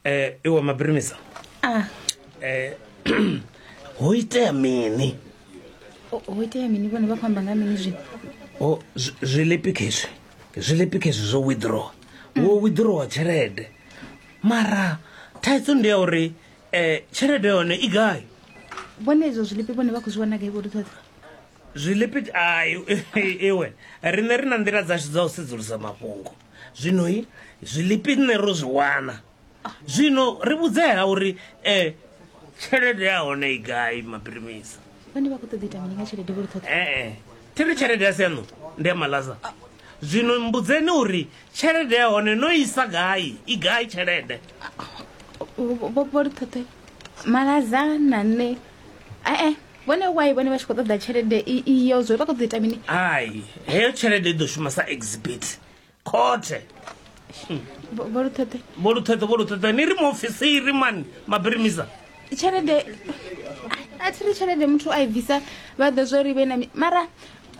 eh iwe mabrimisa ah eh ho itea mini o- ho itea mini vhone vha khou amba nga mini zwino o zwi- zwilepi khezwi zwilepi khezwi zwo withdraw wo withdrawa tshelede mara thaidzo ndi ya uri eh tshelede yone i gai vhone izwo zwilipi vhone vha khou zwi wana gai vho ri ṱhoḓa zwilepi ai iwe riṋe ri na nḓila dzashu dza u sedzulusa mafhungo zwino i zwilipi nṋe ro zwi wana zwino ri vhudzea uri um eh, tshelede ya hone i gai mapirimisa vhane vha khou ṱoḓa ita mini nga tshelede vho ṱhoḓa ee eh, eh. thi ri tshelede ya siano ndi ya malaza ah. zwino mbudzeni uri tshelede ya hone no isa gai i gai tshelede vho ri ṱhoḓe malaza na nṋe ee vhone why vhone vha tshi khou ṱoḓa tshelede iyo zwo vha khou ṱoḓa ita mini hai heyo tshelede i ḓo shuma sa exhibit khothe vholuṱheṱhe vholuṱheṱhe vholuṱheṱhe ni ri muofisiri mani mabirimisa tshelede a thi ri tshelede muthu a i bvisa vha ḓo zwo ri vhe na mara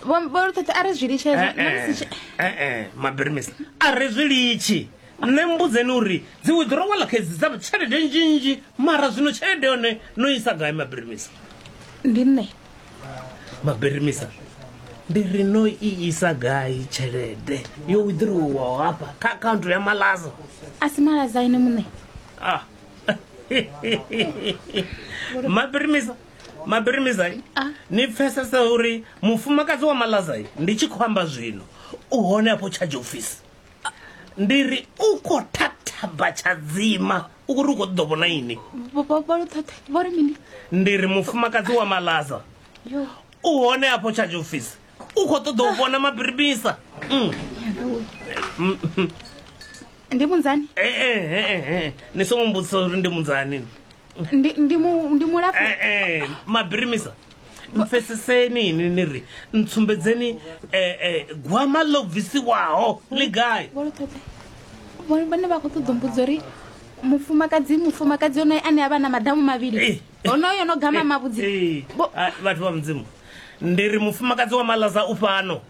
vholuṱheṱhe a ri zwi litshee eh, eh, eh, mabirimisa a ri zwi litshi Nṋe mmbudzeni uri dzi withdrawal khedzi dza tshelede nzhinzhi mara zwino tshelede yone no isa gai mabirimisa? Ndi nṋe. Mabirimisa ndi ri no i isa gai tshelede yo withdrawal hafha kha account ya Malaza? A si Malaza ene muṋe. Ah. Mabirimisa Mabirimisa ah. ni pfesesa uri mufumakadzi wa Malaza ndi tshi khou amba zwino u hone afho charge office. ndi ri u khou thathaba tshadzima u kuri u khou ṱoḓo vhona ini ndi ri mufumakadzi wa malaza u hone afho charge office u khou ṱoḓa u vhona mabiribisa mm. mm, mm. ndi munzani eh, eh, eh, ni songo mbudzisa uri ndi munzani ndi ndi mu ndi mulapfu Eh, eh, mabirimisa mpfeseseni ini ni ri ntsumbedzeni eh, eh, gwama ḽo bvisiwaho ḽi gai vholo ṱoḓe Vho- vhone vha khou ṱoḓa mbudzo uri mufumakadzi mufumakadzi onoyo ane a vha na madamu Eh. mavhili onoyo no gama Eh, mavhudzi eh, Vho- ah, vhathu vha mudzimu ndi ri mufumakadzi wa malaza u fhano